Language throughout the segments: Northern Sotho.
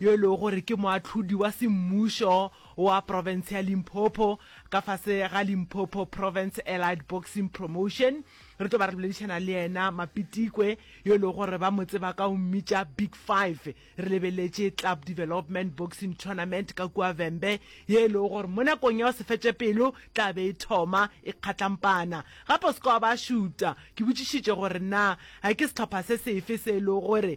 yo e lego gore ke moahlodi wa semmušo wa profense ya Limpopo ka fase ga Limpopo Province Allied Boxing Promotion. Re tlo ba re boledišana le yena Mapitikwe yo e lego gore ba mo tseba ka go mmitša Big Five. Re lebeletše Club Development Boxing Tournament ka kua Vhembe ye e lego gore mo nakong ya go se fetše pelo tla be e thoma e kgatlampana. Gape o se ke wa ba šuta ke botšišitše gore na ke sehlopha se sefe se e lego gore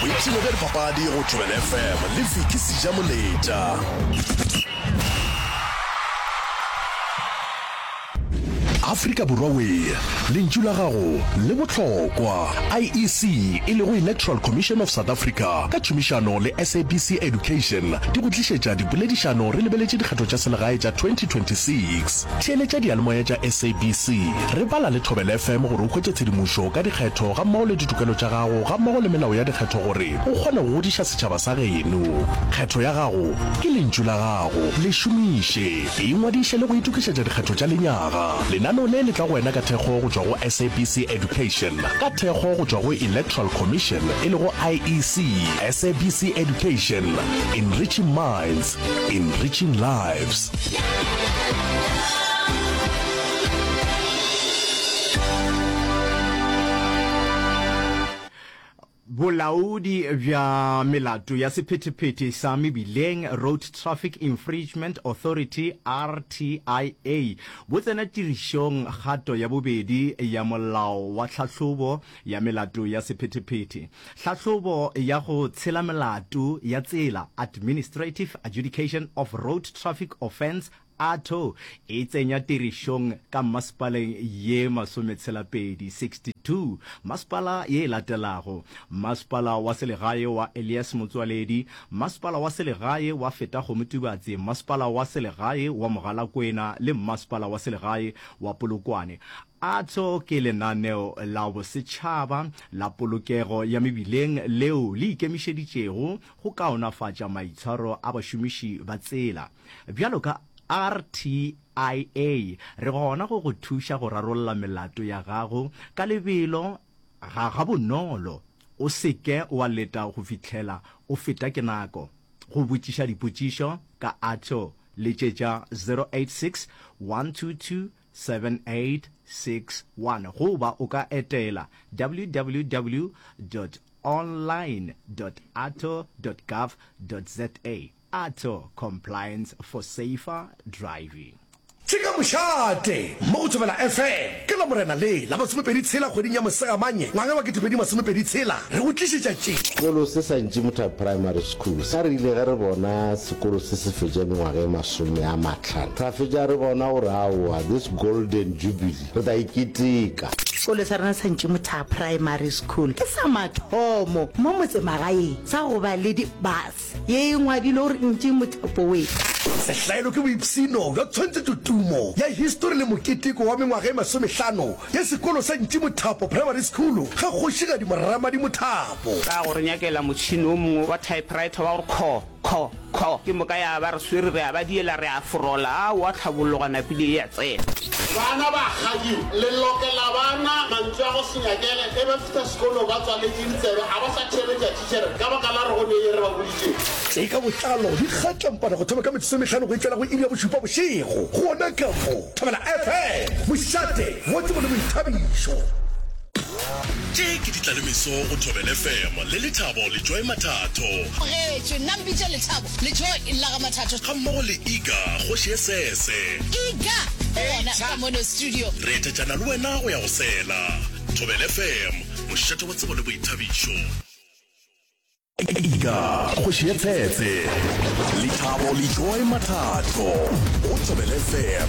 boipshino bja dipapadi go tšwele fm le fiki seja moletša afrika borwa wee lentšu la gago le bohlokwa iec e lego electoral commission of south africa ka tšhomišano le sabc education di go tlišetša dipoledišano re lebeletše dikgetho tša selegae tša 2026 Theeletša diyalemoya tša SABC. Re bala le Thobela FM gore o hwetše tshedimošo ka dikgetho gammogo le ditokelo tša gago gammogo le melao ya dikgetho gore o kgone go godiša setšhaba sa geno. Kgetho ya gago ke lentšu la gago. Le šomiše. Ingwadiše le go itokišetša dikgetho tša lenyaga. Lenaneo le le tla go wena ka thekgo go tšwa go SABC Education, ka thekgo go tšwa go Electoral Commission e lego IEC. SABC Education, Enriching Minds, Enriching Lives. Bolaodi bja melato ya sephetephete sa mebileng Road Traffic Infringement Authority RTIA bo tsena tirišong kgato ya bobedi ya molao wa tlhahlobo ya melato ya sephetephete. Hlahlobo ya go tshela melato ya tsela, Administrative Adjudication of Road Traffic Offence, AATO, e tsenya tirišong ka mmasepaleng ye masometshela-pedi, 62, masepala ye e latelago, Mmasepala wa selegae wa Elias Motsoaledi, Mmasepala wa selegae wa Fetakgomo Tubatse, Mmasepala wa selegae wa Mogalakwena le Mmasepala wa selegae wa Polokwane. Atso ke lenaneo la bosetšhaba la polokego ya mebileng leo le ikemišeditšego go kaonafatša maitshwaro a bašomiši ba tsela. Bjalo ka RTIA, re gona go go thuša go rarolla melato ya gago ka lebelo ga gabonolo. O se ke wa leta go fihlela o feta ke nako. Go botšiša dipotšišo ka Atso letšetša 086 122 7861 goba o ka etela www.online.arto.gov.za, Arto, Compliance for Safer Driving. Ke ka Mošate mo go Thobela FM ke Lamorena le la masomepedi tshela kgweding ya Mosegamanye ngwaga wa ketepedi masomepedi tshela re go tlišetša tše. Sekolo se sa Ntšimutha Primary School sa re ile ge re bona sekolo se se fetša mengwaga e masome a tlhano. Ra fetša re bona gore aowa this golden jubilee re tla e keteka. Sekolo sa rena sa Ntšimothaha Primary School ke sa mathomo mo motsemagaeng sa go ba le di-bus ye e ngwadilwe gore Ntšimotha Boys. Sehlaelo ke boipshino bja tshwantshetšo tumo ya histori le moketeko wa mengwaga e masomehlano ya sekolo sa Ntšimothapo Primary School ga Kgošigadi Moramadi Mothapo. Ka go re nyakela motšhini o mongwe wa typewriter wa gore kho. Kho! Kho! Ke moka ya ba re swere, re a ba diela, re a forola, a oa tlhabologa, napile e a tsena. Bana ba kgadiwa, le lokela bana mantšu a go se nyakele, ge ba fihla sekolong ba tswaletše ditsebe, ga ba sa theeletša thitšhere ka baka la gore go ne ye re ba boditšego. Tše ka botlalo di gatla mpana go thoma ka metsotso e mehlano go itšela go iri ya bošupa bošego, gona ka mo Thobela FM, Mošate, Godimo le Boithabišo. Tše ke Ditlalemeso go Thobela FM le Lethabo le Joy Mathatho. Bogetšwe, nna mpitša Lethabo le Joy Llagamathatho. Gammogo le Iga Kgoši ye sese. Iga o gona ka mono studio. Re etetšana le wena go ya go sela. Thobela FM, mošate wa tsebo le boithabišo. Iga Kgoši ye sese. Lethabo le Joy Mathatho go Thobela FM.